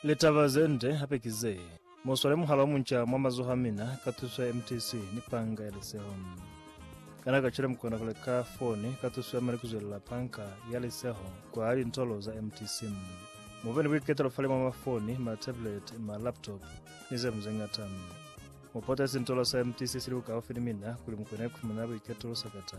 Litaba ze nde hape ki ze, Mu swale muhala o munca mwa mazoho a mina ka tuso ya MTC ni Panga ya Liseho. Kana kacwale mu kona ku leka foni ka tuso ya mali ku zwelela Panga ya Liseho kwa lintolo za MTC? Mu be ni buiketelo fale mwa mafoni, matablet, malaptop, ni ze ling ze ñata. Mu pote sintolo sa MTC sili bukaufi ni mina kuli mu kone ku fumana buiketelo sakata.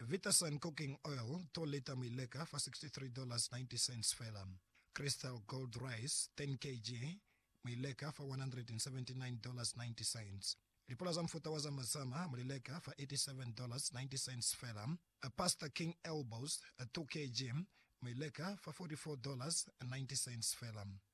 Vitasun Cooking Oil to lita mu i leka fa $63.90 fela. Crystal Gold Rice 10 kg mu i leka fa $179.90. Lipula za mufuta wa Zama Zama mu li leka fa $87.90 fela. Pasta King Elbows 2 kg mu i leka fa $44.90 fela.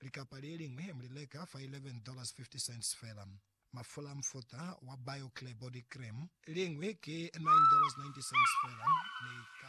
Likapa le liñwi mu li leka fa $11.50 fela. Mafula a mufuta wa Bio-Clear Body Cream, liñwi ki $9.90 fela, mi ka.